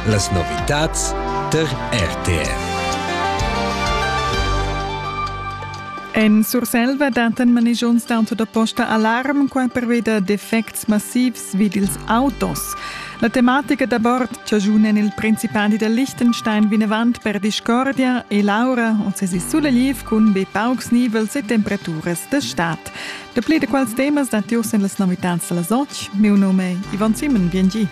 Las novitads tar RTR. En Surselva dattan manigiuns d'auto da posta alarm, quai pervia da defects massivs vid ils autos. La tematica da bord chajuna il Principali da Liechtenstein vinavant per discordia e l'aura on sesi sulegliv cun be paucs nivels e temperaturas da stad. Dapli da quels temas datti uss en las novitads da las otg. Miu num è Ivan Simon, bien gi.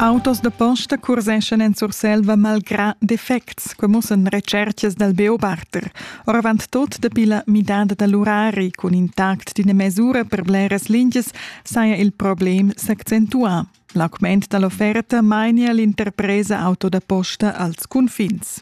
Autos da posta curseschan en Surselva malgrà defects, que mussan recerchas dal Beobachter. Oravant tot dapi la midada da l'urari cun intact d'ina mesura per bleras lingias saja il problem s'accentuà. L'augment da l'offerta mainia l'interpresa auto da posta als cunfins.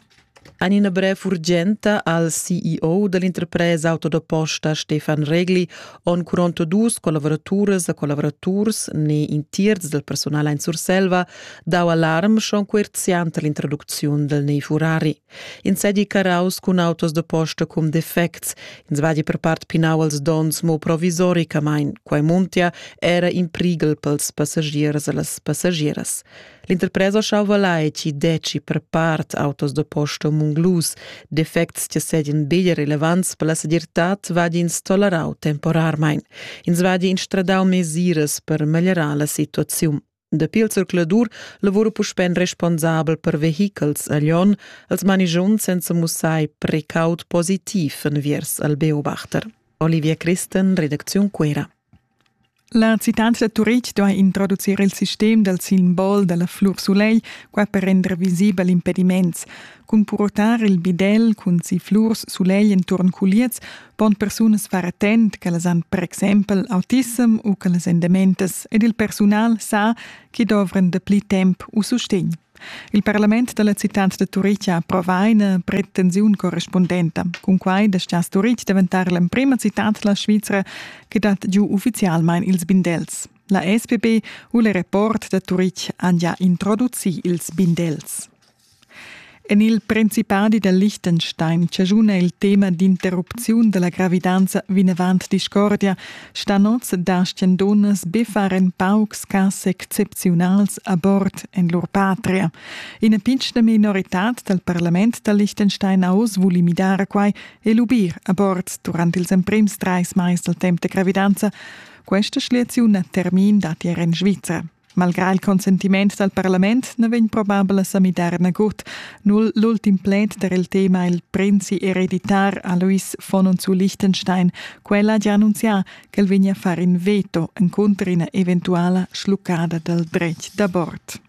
En ina brev urgenta al CEO da l'interpresa auto da posta Stefan Regli on curonto dus collavoraturas e collaboraturs ne in tierz del personal in Surselva dau alarm schon coerziant all'introducziun del nei Furari. Ins seigi caraus cun autos da posta cun defects. Ins vadi per part pinau als donns mo provisoricamein. Quei muntia era in prighel pels passagiers e las passagieras. L'interpresa schauva lai ci deci per part autos da posta munglus. Defects che sedien bigl relevants per la segirtad vadins tolerau temporarmein. Ins vadi in stradau mesiras per meglierar la situaziun. Dapi il zercladur lavura puspè in responsabel per vehichels a Lyon als manigiunts senza mussar precaut positiv enviers al Beobachter. Olivia Christen, Redaktion Cuera. La citat da Turitg duai introducir il sistem dal simbol da la flur sulegl, qua per render visibel impediments. Cun purtar il bidel cun si flurs sulegl enturn culiez pon persunas far attent ch'ellas han per exempel autism u ch'ellas èn dementas ed il persunal sa ch'i dovran dapli temp u sustegn. Il parlament da la citad da Turitg ha approvà ina pretensiun correspundenta. Cunquai dastgias Turitg daventar l'emprima citad da la Svizra che dat giu uffizialmain ils bindels. La SPP u il rapport da Turitg han già introducì ils bindels. En il Principadi da Liechtenstein chaschuna il tema d'interrupziun da la gravidanza vinavant discordia, stan oz dastgan dunnas be far in paucs cas excepziunals a bord en lur patria. Ina pitschna minoritad dal parlament da Liechtenstein ha oz vuli midare quai e lubir a bord durant ils emprims trais mais dal temp da gravidanza. Questa schliaziun ha termin datier en Svizra. Malgrà il consentiment dal parlament na vegn probabel a sa midar nagut. Null l'ultim pled per il tema il prinzi ereditar Alois von und zu Liechtenstein. Quella ha già annunzià ch'el vegnia a fare in veto encunter ina eventuala schluccada dal dretg d'abort.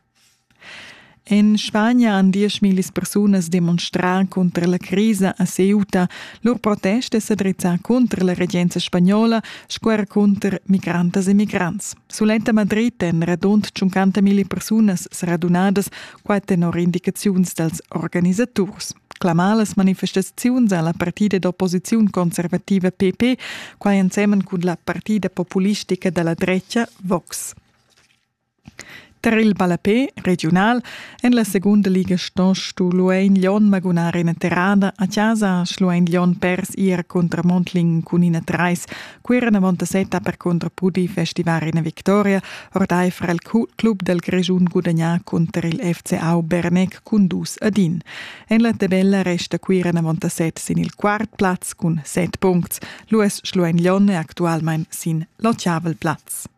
En Spagna han dieschmillis persunas demonstrà cunter la crisa a Ceuta. Lur protest è sa drizzà cunter la regenza spagnola sco er cunter migrantas e migrants. Suletta Madrid èn radund 50.000 persunas sradunadas, quai tenor indicaziuns dals organisaturs. Clamar las manifestaziuns alla partida d'opposiziun conservativa PP, quai ensemen cun la partida populistica dalla drecha Vox. Tar il ballapè regiunal en la segunda liga ston Stuhluein Glion magunar ina terrada. A chasa ha Schluein Glion pers ier cunter Mondling cun ina trais. Cuira Montasetta percunter pudì festivar ina victoria. Ordaifer il club dal Grischun gudagnà cunter il FCA Bernec cun dus ad in. En la tabella resta Cuira Montasetta sin il quart plaz cun set puncts. Luis Schluein Glion è actualmain sin l'otgavel plaz.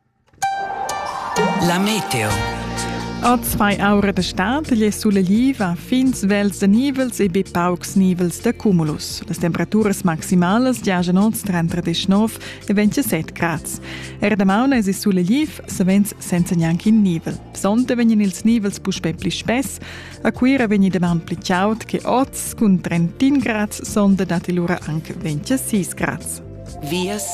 La meteo. Oz fai aura da stad gli suleliva fin svels da nivels e be paucs nivels da cumulus. Las temperaturas maximalas giajan oz tra 39 e 27 grads. Er damaun es il suleliv savens senza gnanc in nivel. Sonte vegnan ils nivels puspè pli spess. A Cuira vegni damaun pli chaud che oz, cun 31 grads sonda datti lura anche 26 grads. vias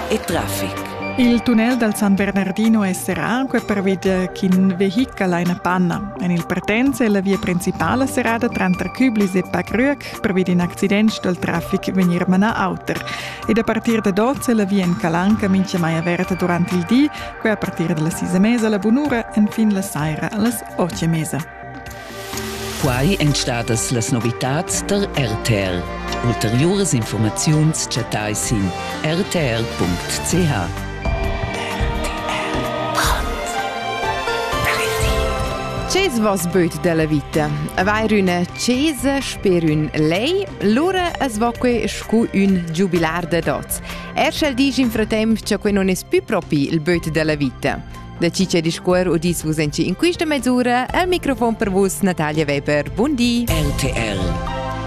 e traffic. Il tunnel dal San Bernardino è serrado pervia ch'in vehichel ha una panna. En il partenza è la via principale serrata tranter Küblis e Packrück pervia d'un accident dal traffic venir manà auter. Ed a partir da 12 è la via in Calanca mincha mai aperta durante il di, quella a partir dalla sis e mesa alla bunura, enfin la saira allas 8 e mesa. Quai èn stadas las novitads tar RTL. Ulteriuras informaziuns chattai sin rtl.ch. Ces vos böt della vita? Aveir üna chesa sper ün lei? Lura es vo que scu ün giubilar dad oz. Er sch'el disch in fratemp cha que non es pü propi il böt della vita. Da chi c'è discuor udis vus en in quista mesura al microfon per vus Natalia Weber. Bundi. RTL